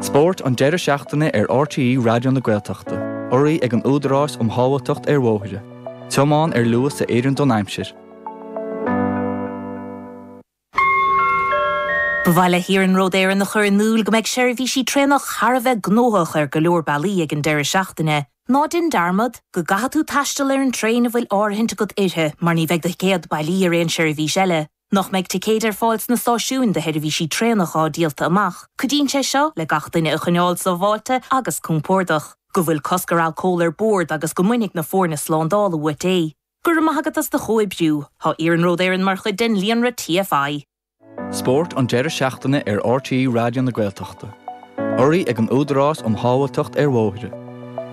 Spórt an deireadh seachtaine ar RTÉ Raidió na Gaeltachta, urraí ag an Údarás um Shábháilteacht ar Bhóithre, tiomáin ar luas a oireann don aimsir. Ba mhaith le hIarnród Éireann a chur in iúl go mbeidh seirbhísí traenach thar a bheith gnóthach ar go leor bealaí ag an deireadh seachtaine. Ná déan dearmad go gcaithfidh tú taisteal ar an traein a bhfuil áirithint agat uirthi mar ní bheidh do thicéad bailí ar aon seirbhís eile. Nach mbeidh ticéid ar fáil sna stáisiúin do sheirbhísí traenach atá díolta amach. Cuidíonn sé seo le gach duine a choinneáil sábháilte agus compordach. Go bhfuil cosc ar alcól ar bord agus go mbainfidh na foirne slándála uait é. Go raibh maith agat as do chomhoibriú. Tá Iarnród Éireann mar chuid den líonra TFI. Spórt an deireadh seachtaine ar RTÉ Raidió na Gaeltachta. Urraí ag an Údarás um Shábháilteacht ar Bhóithre.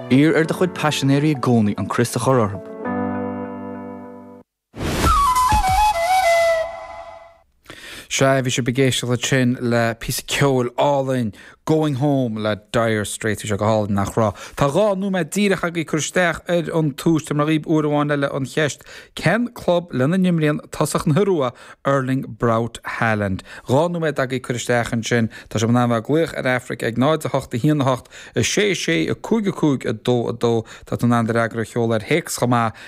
Iarr ar do chuid paisinéirí i gcónaí an crios a chur orthu. Sea, bhí sibh ag éisteacht ansin le píosa ceoil álainn, Going Home le Dire Straits, bhí sé go hálainn, nach raibh? Tá dhá nóiméad díreach agaibh cur isteach ar an tomhas. Tabharfaidh mé daoibh uair amháin eile an cheist, cén club lena n-imríonn tosach na hIorua, Erling Braut Haaland? Dhá nóiméad agaibh cur isteach ansin, tá sibh in ann bheith ag glaoch ar Aifric ag 0, 0, 8, 1, 8, 6, 6, 6, 5, 5, 2, 2, tá tú in ann do fhreagra a sheoladh ar théacs chomh maith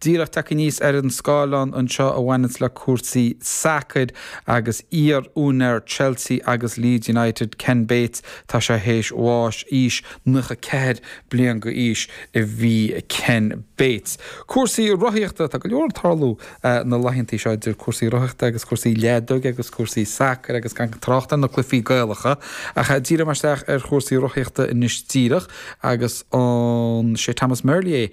Díreach tagtha aníos ar an scáileán anseo a bhaineanns le cúrsaí sacair agus iar-úinéir Chelsea agus Leeds United, Ken Bates, tá sé théis bháis. Aois 94 bliain d'aois a bhí Ken Bates. Cúrsaí rothaíochta, tá go leor ag tarlú na laethanta seo idir chúrsaí rothaíochta agus cúrsaí leadóige agus cúrsaí sacair agus gan trácht ar na cluichí Gaelacha ach díreoidh muid isteach ar chúrsaí rothaíochta anois díreach agus an é Thomas Merlier é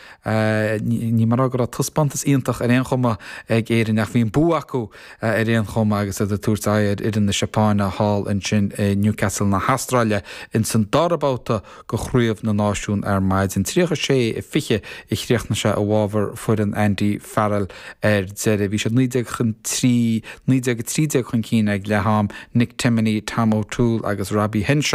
Ní móide go raibh taispeántas iontach ar aon chuma ag Éirinn ach bhí an bua acu ar aon chuma agus iad ag tabhairt aghaidh ar fhoireann na Seapáine thall ansin i Newcastle na hAstráile ins an dara babhta de Chraobh na Náisiún ar maidin. 36, 20 a chríochnaigh sé i bhfabhar foireann Andy Farrell ar deireadh. Bhí siad 19, 19, 13 chun cinn ag leath-am, Nick Timoney, Tom O'Toole agus Robbie Henshaw.